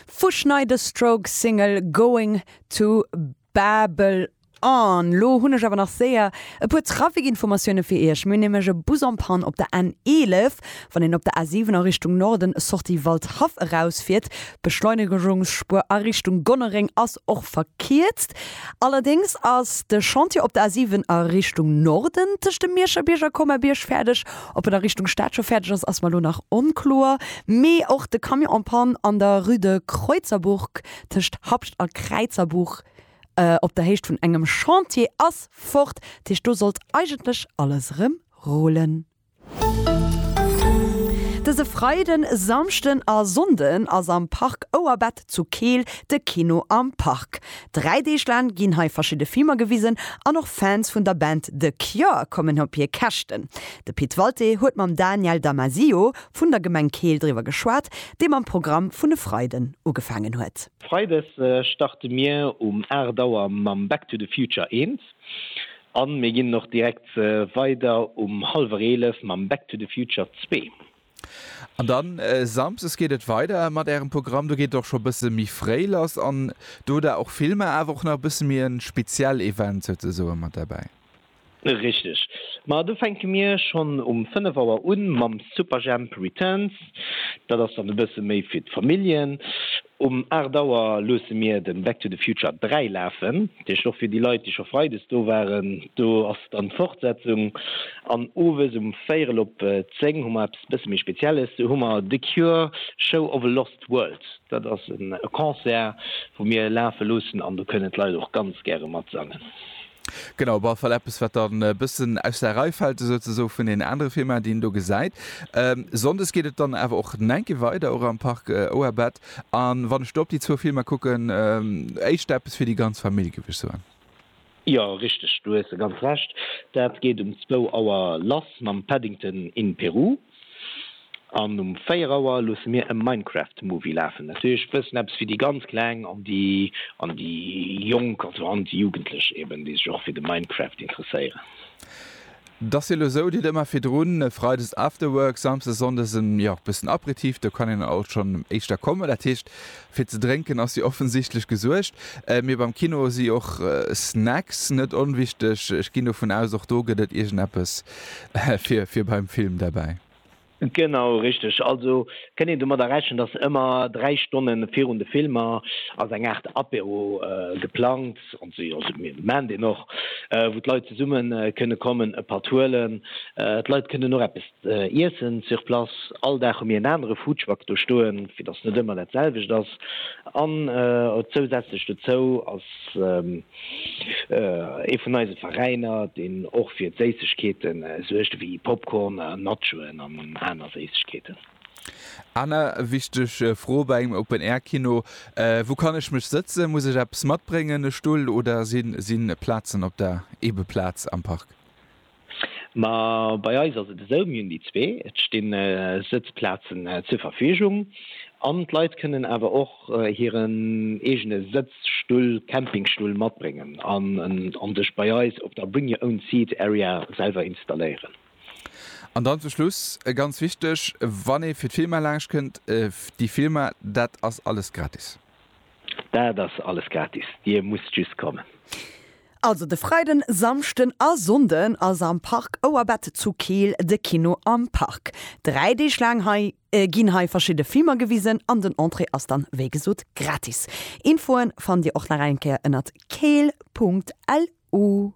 Vu Schneid a Strokes Single Going to Babel On. Lo hunn ech awer nach séier e puer Trafic-Informatioune fir Iech. Mir hunn nämlech e Bus en Panne op der N 11, wann een op der A 7 a Richtung Norden, Sortie Waldhaff, eraus fiert. D'Beschleunegungsspuer a Richtung Gonnereng ass och verkierzt. Allerdéngs ass de Chantier op der A 7 a Richtung Norden tëscht dem Miescherbierg a Comerbierg fäerdeg. Ob en a Richtung Stad scho fäerdeg ass, ass mer elo nach onkloer. Mee och de Camion en panne an der Rue de Kreuzerburg, tëscht Habscht a Kräizerbuch, op der Héicht vun engem Chantier, ass fort. Dat heescht, do sollt eigentlech alles erëm rullen. Dëse Freiden, Samschden a Sonnden ass am Parc Ouerbett zu Keel de Kino am Park. Dräi Deeg laang ginn hei verschidde Filmer gewisen an och Fans vun der Band The Cure kommen op hir Käschten. De Pit Walté huet mam Daniel Damasio vun der Gemeng Keel driwwer geschwat, dee mam Programm vun e Freiden ugefaangen huet. Freides starte mir um 8 Auer mam Back to the Future 1 an mir ginn och direkt weider um hallwer 11 mam Back to the Future 2. An dann Samsdes geet et weider mat ärem Programm. Do geet et och scho bësse méi fréi lass an do hutt der och Filmer, awer och nach e bësse méi e speziell Event souzesoen mat derbäi. Richteg. Ma do fänke mir schonn um 5 Auer un mam Superjhemp Returns. Dat ass dann e bësse méi fir d'Familljen. Um 8 Auer luusse mir den Back to the Future 3 lafen, dee Stoff fir déi Leit déi scho Freides do waren. Do ass dann d'Fortsetzung an Owes um véierel op 10 hu mer eppes bësse méi Spezielles, do hu mer The Cure, Show of a Lost World. Dat ass e Concert wou mir lafe loossen an do kënnen d'Leit och ganz gäre matsangen. Genau, op alle Fall eppes, wat dann e bëssen aus der Rei fält, esou ze soen, vun deenen anere Filmer, déi een do gesäit. Sonndes geet et dann awer och nach eng Kéier weider, och am Parc Oerbet. A wann ech do op déi zwou Filmer kucken, éischter eppes fir déi ganz Famill, géif ech soen. Jo, richteg, do hues de ganz Recht. Dat geet um zwou Auer lass mam Paddington in Peru. An um 4 Auer loosse mir e Minecraft Movie lafen, natierlech e bëssen eppes fir déi ganz Kleng an déi an déi Jonk, also an déi Jugendlech eben, déi sech och fir de Minecraft interesséieren. Dass hie lo sou deet, ëmmer virdrun Freides Afterwork, Samsdes, Sonndes en, jo, bëssen Aperitif, do kann een alt schonn éischter kommen. Dat heescht, Fir ze drénken ass jo offensichtlech gesuergt, mee beim Kino si och Snacks net onwichteg. Ech ginn dovun aus, och do gëtt et iergendeppes fir beim Film derbäi. Genau, richteg. Also kënnt een domadder rechnen, datt ëmmer dräi Stonne virun de Filmer ass eng Aart Apéro geplangt, also mir maachen deen och, wou d'Leit zesumme kënne kommen, e Patt huelen. D'Leit kënnen och eppes Iessen sur place, all Dag hu mir en anere Foodtruck do stoen, fir datt net ëmmer dat selwecht ass. An zousätzlech dozou ass ee vun eise Veräiner, deen och fir d'Séissegkeeten suergt, ewéi Popcorn a Nachoen an aner Séissegkeeten. Aner wichteg Fro bei engem Open Air Kino, Wou kann ech mech sëtzen? Muss ech eppes matbréngen, e Stull, oder si Plazen op der Ebeplaz am Park? Ma bei eis ass et esou, mir hunn déi zwee, et stinn Sëtzplazen zur Verfügung an d'Leit kënnen awer och hiren eegene Sëtzstull, Campingstull matbréngen an sech bei eis op der Bring Your Own Seat Area selwer installéieren. An dann zum Schluss ganz wichteg, wann ee fir d'Filmer laanscht kënnt, déi Filmer, dat ass alles gratis? Dat ass alles gratis, Dir musst just kommen. Also de Freiden, Samschden a Sonnden ass am Park Ouerbett zu Keel de Kino am Park. Dräi Deeg laang hei ginn hei verschidde Filmer gewisen an den Entrée ass dann wéi gesot gratis. Infoen fannt dir och nach eng Kéier ënnert keel.lu.